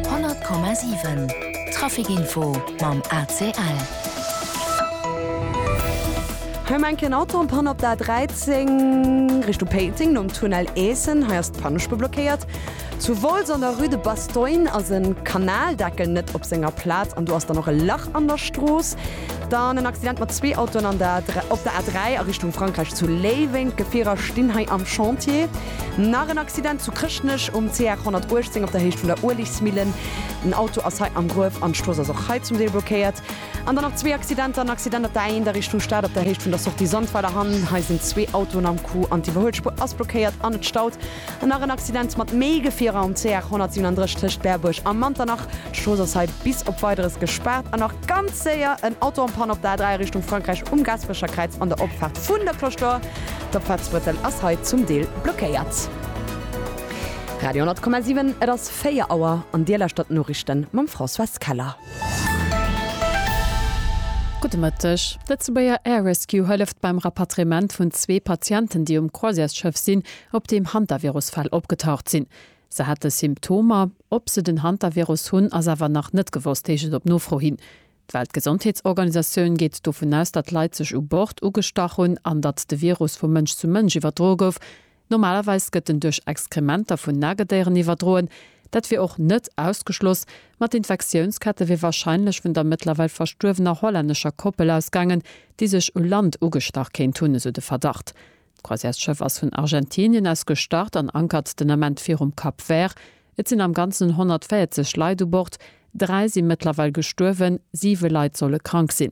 100,7 Traficinfo mam ACL. Hei eng kleng Autopann op der A13 Richtung Péiteng nom Tunnel Eessen. Hei ass d'Pannespur blockéiert. Zu Wolz an der Rue de Bastogne ass e Kanaldeckel net op senger Plaz an do ass dann och e Lach an der Strooss. Dann en Accident mat zwee Autoen an der op der A3 a Richtung Frankräich zu Léiweng. D'Gefierer stinn hei am Chantier. Nach en Accident zu Chrëschtnech um CR 118 op der Héicht vun der Uelegmillen. En Auto ass hei am Gruef an d'Strooss ass och hei zum Deel blockéiert. An dann nach zwee Accidenter, en Accident op der A1 a Richtung Stad op der Héicht vun der Sortie Sandweiler Hann. Hei sinn zwee Autoen am Coup an d'Iwwerhuelspur ass blockéiert an et staut. An nach en Accident mat méi Gefierer um CR 137 tëscht Berbuerg a Manternach. D'Strooss ass hei bis op Weideres gespaart. An nach ganz séier en Auto en Panne op der A3 a Richtung Frankräich um Gaasperecher Kräiz an der Opfaart vun der Cloche d'Or. D'Opfaartsbrëssel ass hei zum Deel blockéiert. Radio 10,7, et ass 4 Auer an Dir lauschtert d'Noriichten mam Françoise Keller. Gudde Mëtteg. D'Lëtzebuerger Air Rescue hëlleft beim Rapatriement vun zwee Patienten, déi um Croisièresschëff sinn, op deem Hantavirus-Fäll opgetaucht sinn. Se hate Symptomer. Ob se den Hantavirus hunn, ass awer nach net gewosst, heescht et op Nofro hin. D'Weltgesondheetsorganisatioun geet dovun aus, datt Leit sech u Bord ugestach hunn an datt de Virus vu Mënsch zu Mënsch iwwerdroe gouf. Normalerweis gëtt en duerch Exkrementer vun Nagedéieren iwwerdroen. Dat wier och net ausgeschloss, ma d'Infektiounskette wier warscheinlech vun der mëttlerweil verstuerwener hollännescher Koppel ausgaangen, déi sech u Land ugestach kéint hunn, esou de Verdacht. D'Croisièresschëff ass vun Argentinien aus gestart an ankert den Ament virum Cap Vert. Et sinn am Ganzen 140 Leit u Bord. Dräi si mëttlerweil gestuerwen, siwe Leit solle krank sinn.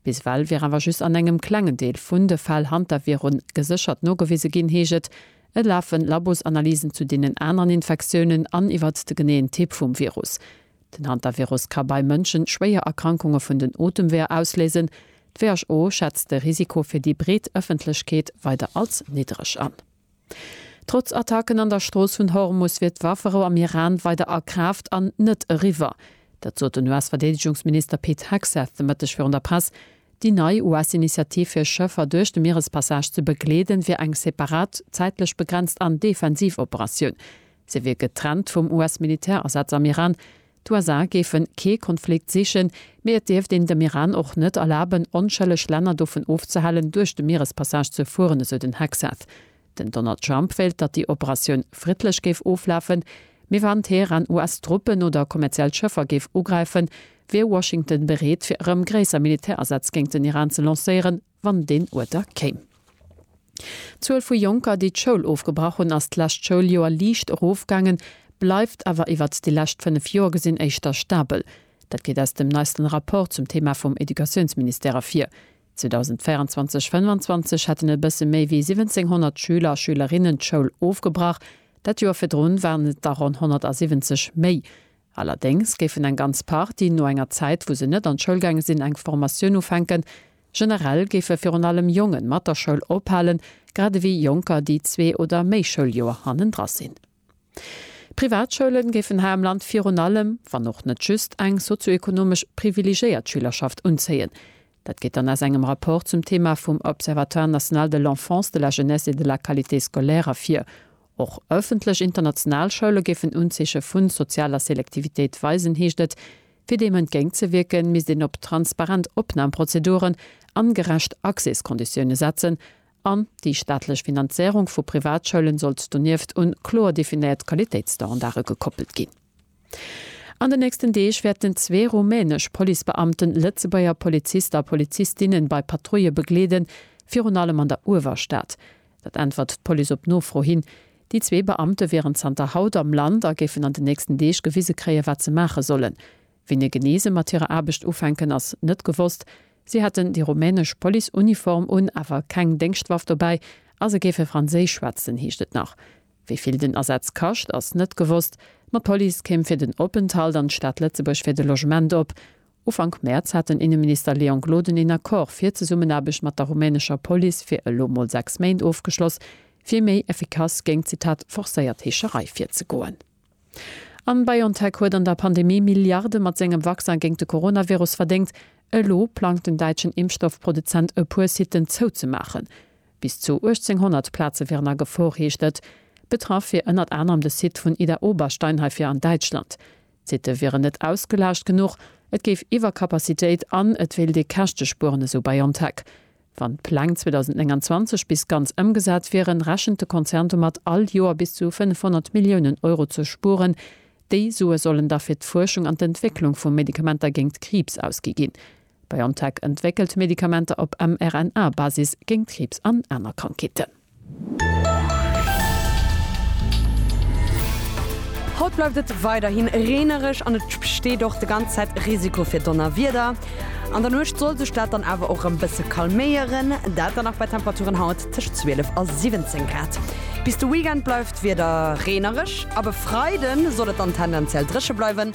Bis ewell wier awer just an engem klengen Deel vun de Fäll Hantavirun geséchert nogewise ginn, heescht et. Et lafe Labosanalysen zu deenen aneren Infektiounen an iwwert de geneeën Typ vum Virus. Den Hantavirus ka bei Mënschen schwéier Erkrankunge vun den Otemweeër ausléisen. D'WHO schätzt de Risiko fir déi breet Ëffentlechkeet weider als niddreg an. Trotz Attacken an der Strooss vun Hormus wier d'Wafferou am Iran weider a Kraaft an net eriwwer. Dat sot den US-Verdeedegungsminister Pete Hegseth de Mëtteg virun der Press. Déi nei US-Initiativ fir Schëffer duerch de Mierespassage ze begleeden, wier eng separat, zäitlech begrenzt an defensiv Operatioun. Se wier getrennt vum US-Militärasaz am Iran. D'USA géifen kee Konflikt sichen, mee et dierft een dem Iran och net erlaben, onschëlleg Länner dovun ofzehalen, duerch de Mierespassage ze fueren, esou den Hegseth. Den Donald Trump wéilt, datt déi Operatioun friddlech géif oflafen, mee wann Teheran US-Truppen oder kommerziell Schëffer géif ugräifen, wier Washington bereet, fir erëm gréisser Militärasätz géingt den Iran ze lancéieren, wann deen Uerter kéim. D'Zuel vu Jonker, déi d'Schoul ofgebrach hunn, ass d'lescht Schouljoer liicht erofgaangen, bleift awer iwwert déi lescht fënnef Joer gesinn éischter stabel. Dat geet aus dem neisten Rapport zum Thema vum Educatiounsministère ervir. 2024/25 hätten e bësse méi wéi 1700 Schüler a Schülerinnen d'Schoul ofgebrach, dat Joer virdrun waren et der ronn 170 méi. Allerdéngs géifen eng ganz Partie no enger Zäit, wou se net an d'Schoul gaange sinn, eng Formatioun ufänken. Generell géife virun allem Jongen mat der Schoul ophalen, grad ewéi Jonker, déi zwee oder méi Schouljoer hannendra sinn. D'Privatschoule géifen hei am Land virun allem, wann och net just, eng sozioekonomesch privilegéiert Schülerschaft unzéien. Dat geet dann aus engem Rapport zum Thema vum Observatoire national de l'enfance, de la jeunesse et de la qualité scolaire ervir. Och ëffentlech international Schoule géifen Unzeeche vu sozialer Selektivitéit weisen, heescht et. Fir deem entgéint ze wierken, misst een op transparent Opnamprozeduren an gerecht Accéskonditioune setzen an déi staatlech Finanzéierung vu Privatschoulen sollt donieft un kloer definéiert Qualitéitsstandarde gekoppelt ginn. An den nächsten Deeg wäerten zwee rumänesch Policebeamten Lëtzebuerger Polizist a Polizistinnen bei Patrouille begleeden, virun allem an der Uewerstad. Dat äntwert d'Police op Nofro hin. Déi zwee Beamte wieren zanter haut am Land a géifen an de nächsten Deeg gewise kréien, wat se maache sollen. Wéini genee se mat hirer Aarbecht ufänken, ass net gewosst. Si hätten déi rumänesch Policeuniform un, awer keng Déngschtwaff dobäi a se géife Franséisch schwätzen, heescht et nach. Wéi vill den Asaz kascht, ass net gewosst. Ma d'Police kéim fir den Openthalt an d'Stad Lëtzebuerg fir de Logement op. Ufank Mäerz hat den Inneminister Leon Gloden een Accord fir d'Zesummenaarbecht mat der rumänescher Police fir elo mol sechs Méint ofgeschloss, fir méi effikass géint, Zitat, forcéiert Heescherei virzegoen. A BioNTech huet an der Pandemie Milliarde mat sengem Vaccin géint de Coronavirus verdéngt. Elo plangt den däitschen Impfstoffproduzent e puer Siten zouzemaachen. Bis zu 1.800 Plaze wieren a Gefor, heescht et. Betraff wier ënnert anerem de Site vun Idar-Oberstein heifir an Däitschland. D'Sitte wieren net ausgelaascht genuch, et géif Iwwerkapazitéit an et wéilt ee Käschte spueren, esou BioNTech. Wann d'Pläng 2029 bis ganz ëmgesat wieren, rechent de Konzern domat, all Joer bis zu 500 Milliounen Euro ze spueren. Déi Sue sollen da fir d'Fuerschung an d'Entwécklung vu Medikamenter géingt Kriibs ausgi ginn. BioNTech entwéckelt Medikamenter op mRNA-Basis géint Kriibs an aner Krankheeten. Haut bleift et weiderhi reenereg an et besteet och de ganz Zäit Risiko fir Donnerwieder. An der Nuecht soll sech dat dann awer och rem bësse calméieren, dat dann nach bei Temperaturen haut tëscht 12 a 17 Grad. Bis de Weekend bleift d'Wieder reenereg, ab e Freide soll et dann tendenziell dréche bleiwen.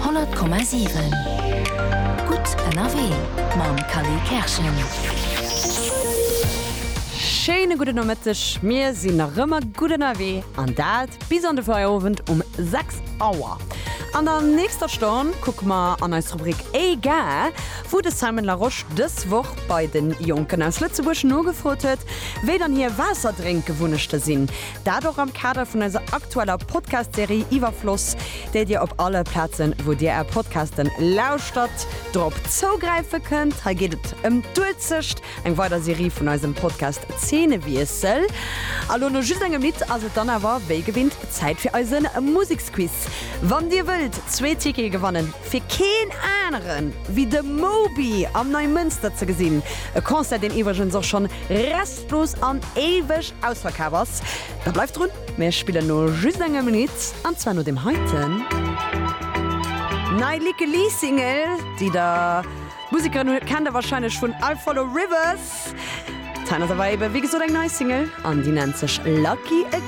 100,7 Gutt ënnerwee mam Khalil Kerschen. Schéine gudden Nomëtteg, mir sinn nach ëmmer gutt ënnerwee an dat bis an de Feierowend um 6 Auer. An der nächster Stonn kucke mer an eis Rubrik Egal, wou de Simon Larosche dës Woch bei de Jonken aus Lëtzebuerg nogefrot huet, wéi dann hir Waasserdrénkgewunnechte sinn. Dat och am Kader vun eiser aktueller Podcast-Serie Iwwerfloss, déi dir op alle Plazen, wou dir är Podcasten lauschtert, drop zougräife kënnt. Hei geet et ëm d'Uelzecht, eng weider Serie vun eisem Podcast Zeenewiessel. A lo, no just engem Lidd, ass et dann awer wéi gewinnt Zäit fir eise Museksquiz. Wann dir wëllt zwee Tickete gewannen, fir keen anere wéi de Moby am Neimënster ze gesinn, e Concert, deen iwwregens och schonn restlos an éiweg ausverkaf ass, da bleift drun! Mir spillen no just engem Lidd, an zwar no deem heiten. Nei Lykke Li Single, déi der Musekerin hu kennt der warscheinlech vun I Follow Rivers. D'heiten ass awer ebe wéi gesot eng nei Single, an déi nennt sech Lucky Again.